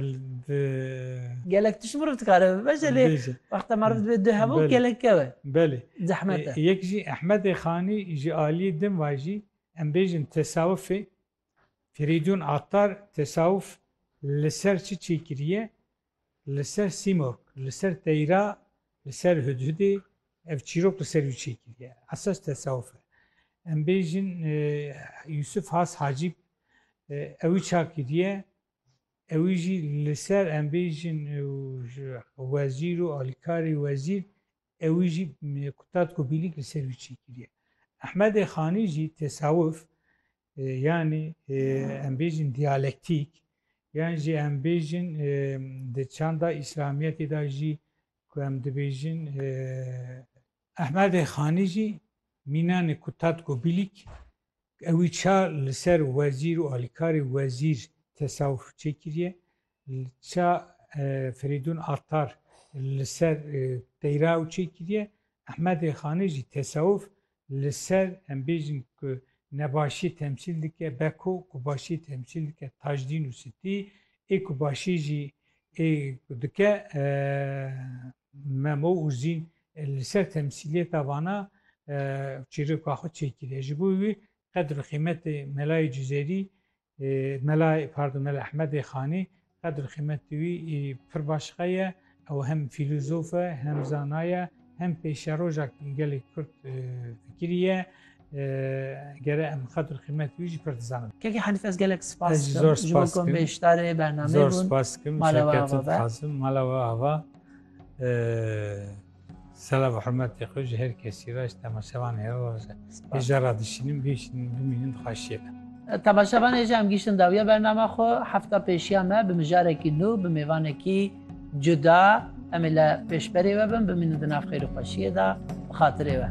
Di. Gelek tişt mirov dikare bibêje lê wexta meriv divê du hev û gelek keve. Belê. Zehmet e. Yek jî Ehmedê Xanî ji aliyê din ve jî em bêjin tesawufê Firîdûn Attar tesawuf li ser çi çêkiriye? Li ser Sîmorg, li ser Teyra, li ser Hudhudê ev çîrok li ser wî çêkiriye. Esas tesawuf e. Em bêjin Yûsuf Has Hacîb ewî çakiriye Ewî jî li ser em bêjin wezîr û alîkarê wezîr ewî jî tatko bîlîk li ser wî çêkiriye. Ehmedê Xanî jî tesawuf yanî em bêjin diyalektîk yan jî em bêjin di çanda îslamiyetê de jî ku em dibêjin Ehmedê Xanî jî mînanê ku Tatgo Bîlîk ewî ça li ser wezîr û alîkarê wezîr tesawuf çêkiriye, ça Ferîdûn Attar li ser Teyraw çêkiriye, Ehmedê Xanî jî tesawuf li ser em bêjin ku nebaşî temsîl dike Beko, ku başî temsîl dike Tajdîn û Sitî, ê ku başî jî ê ku dike Memo Uzîn li ser temsîliyeta vana çîroka xwe çêkiriye. Ji bo wî qedr û qîmetê Melayê Cizêrî, Mela pardon Mela Ehmedê Xanî qedr û qîmetê wî pir baş qeye. Ew hem fîlozof e, hem zana ye, hem pêşeroja gelê Kurd fikirî ye. gere em xatir xîmet wî jî pir dizanim. Kekê Hanîf ez gelek spas Ez jî zor dikim ji bo spas ku em dikim. bêşdarê bernameyê Zor bûn. spas dikim. Mala we Şevket ava be. Qasim, mala we ava. Ee, Selam û hurmetê xwe ji her kesî re, ji temaşevan hêra re. Spas. Hêja re dişînim, bişînim, bimînim dixweşiyê be. Temaşevan hêja em gihiştin dawiya bernama xwe. Hefta pêşiya me bi mijarekî nû, bi mêvanekî cuda em ê li pêşberê we bin, bimînin di nav xêr û xweşiyê de bi xatirê we.